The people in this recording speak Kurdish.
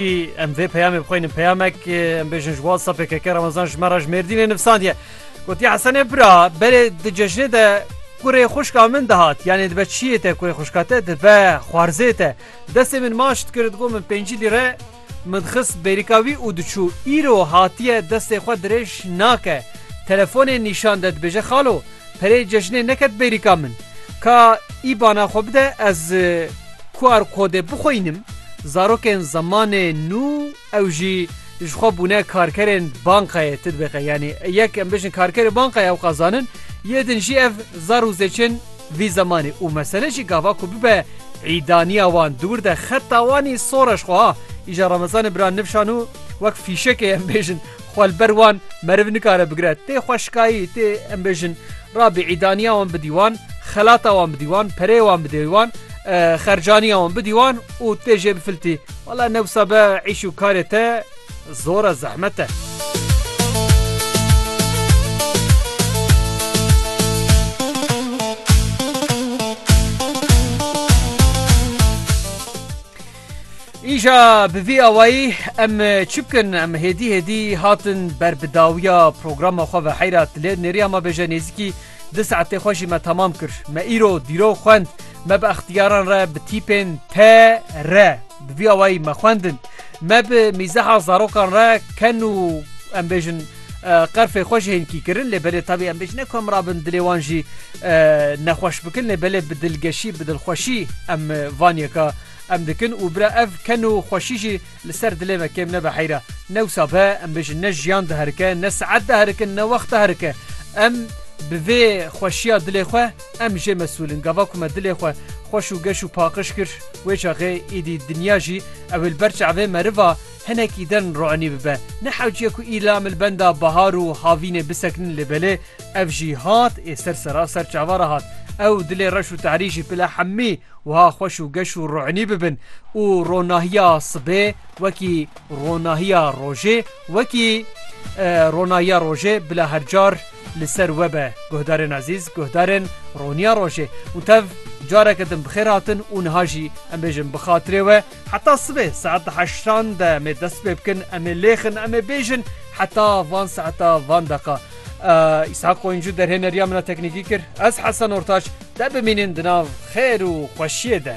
Em vê peyamê bixwînin peyamek em bêjin ji wasa pkk Ramazan ji me re ji Mêrdînê nivsandiye. Gotiye Hesenê bira berê di cejnê de kurê xuşka min dihat yanê dibe çiyê te kurê xuşka te dibe xwarzê te destê min maç dikir digo min pêncî lîre min dixist bêrîka wî û diçû îro hatiye destê xwe dirêj nake telefonê nîşan de dibêje xalo Pereyê cejinê neket bêrîka min. Ka îbana xwe bide ez QR kodê bixweynim. Zarokên zemanê nû ew jî ji xwe bûne karkerên bankayê titbîqê yanî yek em bijin karkerê bankayê ew qas zanin yê din jî ev zar û zêçin vî zemanê û mesele jî gava ku bibe îdaniya wan diwir de xeta wanî soreş xwe ha îja remezanê bira nivşan û wek fîşekê em bêjin Xwe li ber wan meriv nikare bigire. Tê xweşikayî, tê em bêjin rabîî daniya wan bidî wan, xelata wan bidî wan, pereyê wan bidê wan, xercaniya wan bidî wan û tê jê bifiltî. Wala ne wisa be îş û karê te zor e, zehmet e. Îja bi vî awayî em çi bikin? Em hêdî hêdî hatin ber bi dawiya programa xwe ve heyra tilê nêriya me bêje nêzîkî di saetê xwe jî me temam kir. Me îro dîrok xwend me bi extiyaran re bi tîpên te re bi vî awayî me xwendin. Me bi mîzeha zarokan re ken û em bêjin qerfê xwe ji hênkî kirin lê belê tabî em bêjin ne ku em rabin dilê wan jî nexweş bikin lê belê bi dilgeşî bi dilxweşî em van yeka Em dikin û bira ev ken û xweşî jî li ser dilê me kêm nebe heyra. Ne wisa be em bêjin ne jiyan diherike, ne siet diherikin, ne wext diherike. Em bi vê xweşiya dilê xwe em jê mesûl in. Gava ku me dilê xwe xweş û geş û paqij kir wê çaxê êdî dinya jî ew ê li ber çavê meriva hinekî din roinî bibe. Ne hewciye ku îla em li benda bahar û havînê bisekinin lê belê ev jî hat ê ser sera ser çava re hat. Ew dilê reş û tehrî jî bila hemî Wiha xweş û geş û rûnî bibin û ronahiya sibê wekî ronahiya rojê wekî ronahiya rojê bila her car li ser we be guhdarên ezîz guhdarên roniya rojê û tev careke din bi xêr hatin û niha jî em bêjin bi xatirê we Heta sibê saet di heştan de em ê dest pê bikin, em ê lêxin, em ê bêjin heta van saeta van deqa. Îshak Qoyuncu derhêneriya min a teknîkî kir. Ez Hesen Ortaç te bimînin di nav xêr û xweşiyê de.